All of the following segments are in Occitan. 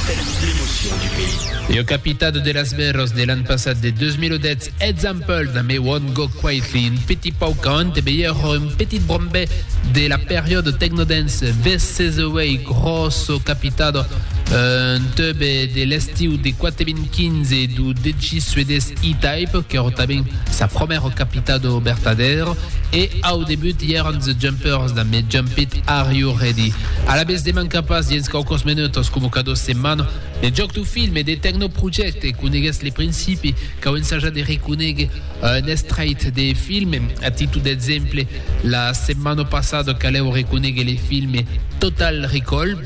Tens l'emocion du pays. Io capitado de las mèrors de l'an passat de 2010, example da me won't go quaithy un petit pauc a ante veir un petit brombe de la periodo techno dance veces away grosso capitado un teube de l'estiu de 4.015 du dj suedés E-Type que ro taben sa promèro capitado bertadero E au debut i èran The Jumpers damb Me Jump It, Are You Ready? Alavetz de mancar pas dens quauquòs menuts coma cada setmana de jòc dau film e de Tecnoproject. Coneguètz le principi, cau ensajar de reconéguer un estrait de film. A títol d'exemple, la setmana passada calèu reconéguer le film Total Recall.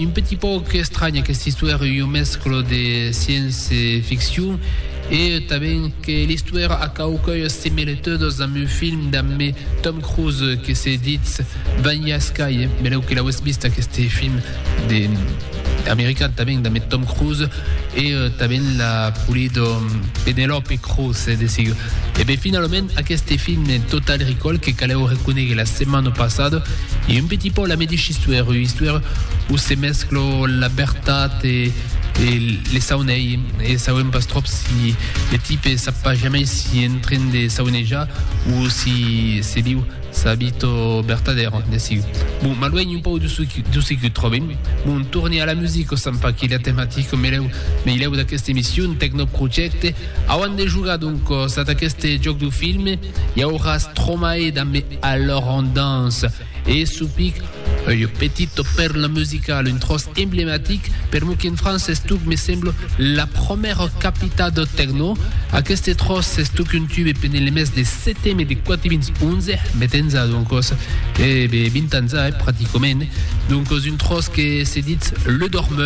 Un petit pauc estranh aquesta istuèra, ua mescla de science ficcion e tanben que l'istuèra a quauquei similitudas damb un film damb Tom Cruise que se ditz Vanilla Sky, benlèu que l'auetz vist aqueste film de american tanben damb Tom Cruise e tanben la polida Penelope Cruz e de sigur. E ben finalament aqueste film Total Recall que calèu reconéguer la setmana passada, E un petit pò la medesh istuèr, ua istuèr où se mesclo la bertat e e le saunei, e sauem pas tròp si le tipe sap pas jamei si en tren de saunejar ou si se viu sa vito bertadèra, de siu. Bon, m'aluènh un pòu de su de se que tròbem. Bon, torne a la musica, sèm pas que la tematica melèu meilèu d'aquesta emission, Tecnoprojecte, auan de jogar donc sat aqueste jòc du film, Iauràs tromai damb mi alòr en dans e supic ue petito perle musical, un tròç emblematic, per mo qu'en França s'estuc, me semblo, la promèra capità deu tecno, aqueste tròç s'estuc un tube pendent le mes de seteme de 411, met enza, doncos, e 20 ans a, eh, praticament, doncos un tròç que se ditz Le Dormeur,